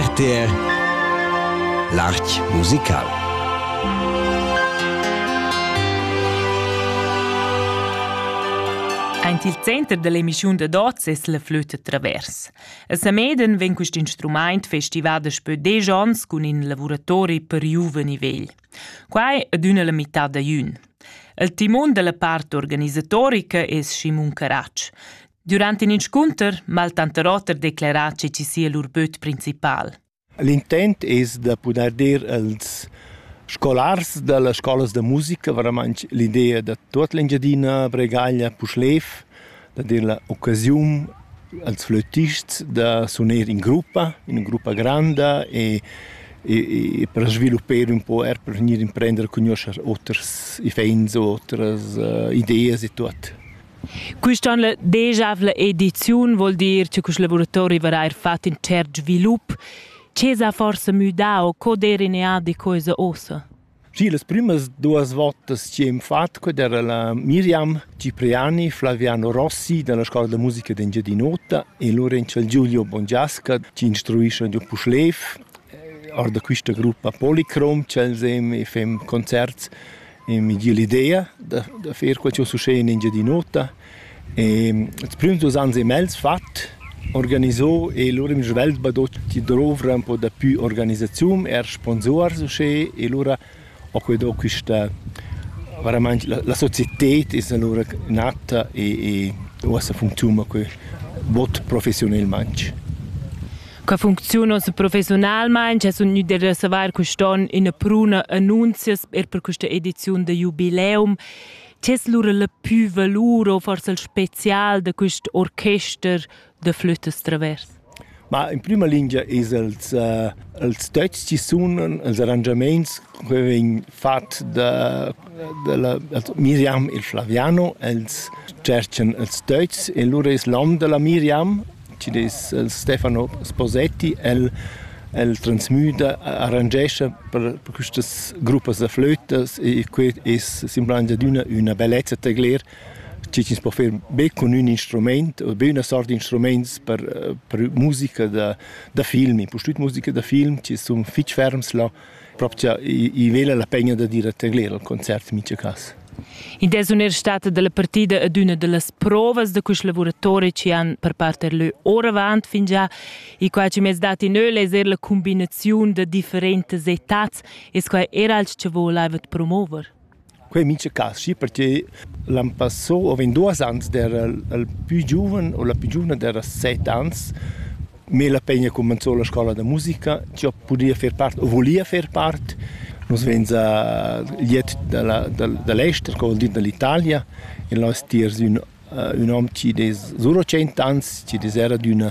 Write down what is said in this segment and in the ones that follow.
RTR L'Arch musical Aint il center dell'emissiun da dots es la flütta travers. A Sameden vegn quist instrumaint festivà daspö desch ans cun in lavuratori per giuven e vegl. Quai adüna la mità da jün. Il timon della part organisatorica es Simon Caratsch. Durant in inscunter m'ha il tanter oter declerà che ci sia lur böt principal. L'intent es da pudair dir als scolars da las scolas da musica, veramente l'idea da tut l'Engiadina, Bregaglia, Puschlev, da dir l'occasione als flötists da suner in gruppa, in gruppa grande e e, e per sviluppare un po' er per venire a prendere cognoscere oters ifens, otras uh, idee e tutto. Quist on la deschavla ediziun voul dir che quist laboratori varà eir fat ün tschert svilup. Che s'ha forsa müdà o co d'eira in eadi cosa uossa? Sì, las prümas duos votas chi hem fat, quella era la Miriam Cipriani, Flaviano Rossi dalla Scola da musica d'Engiadin'Ota e Lorenz Giulio Bongiasca chi instruischan giò Puschlev, or da quista gruppa Policrom ch'els hem e fem concerts E miglier l'idea da, da fer quel ch'eu succed in Engiadin'Ota. E ils prüms dus ans e mez fat, organiso e lura in svelt badot chi douvra ün po dapü organisaziun, eir sponsuors uschè. E lura ho que do quista veramaing la, la societed es alura natta e, e uossa funcziuna que bod professiunelmaing. Qua funcziuna professionalmain, che sun gnü da savair quist'on ina pruna annunzias er per questa ediziun da Jubileum. Che es lura la pü valur o forse il spezial da quist orchester da flütas travers? Ma in prima lingia es els, uh, els töchs chi sunan, els arrangiamaints che vegn fat da, da la, Miriam e Flaviano, els tscherchan els töchs e lura es l'om da la Miriam Ti dis el Stefano Sposetti, el el transmüda, arrangescha per per quistas gruppas da flötas e que es simplamaing adüna üna bellezza tegler. Ti tins po fer be cun ün instrumaint o be üna sort d'instrumaints per per musica da da film, impustüt musica da film, ti sun fich ferms là propria i vela la pegna da dir a tegler al concert in mica cas. In des un er stata dalla partida ad una dallas provas da quest lavoratori ci han per parte lö ora avant fin già i qua ci mez dati neu leser la combinazione da differentes etats es qua era als che voleva promover. Quei mintga carschi perche l'an passò havein duos ans d'era il plü giuven o la plü giuvna d'era set ans, mê la pegna cumanzò la scoula da musica, chi ho pudia fer part o vulia fer part. Nus vein za liet dalla da l'ester, co vuol dir dall'Italia. In lò es tiers ün ün hom chi dess suro tschient ans, chi'd es era d'üna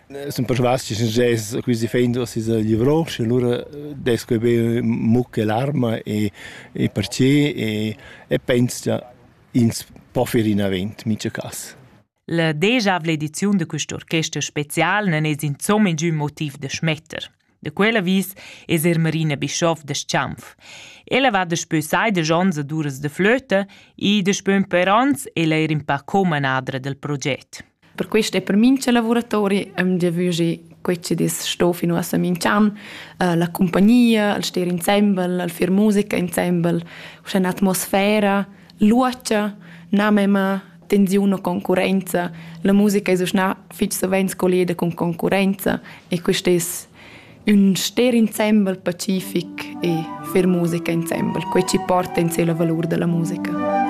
Sun persvas chi success quist effect da sis livrò, schi alura dess que be mucca e larma e e perche e e pens cha ins po fer inavant mincha cas. La degiavla ediziun da quist orchester special nun es insomma ingün motiv da schmetter. Da quel avis es er Marina Bischoff da Schanf. Ella va daspö sai desch ons ad uras da flöta e daspö ün per ans è eir in pa comanadra del proget. Per questo è per mincha lavoratori am giavüschi quei che dis sto fino a Samincan, uh, la compagnia, il stare insieme, il far musica insieme, una atmosfera luocha, na mema tensiun o concurenza. La musica es uschna fich savens colleda cun concurenza e quist es ün ster insembel pacific e fer musica insembel, quai ci porta in sé la valur da la musica.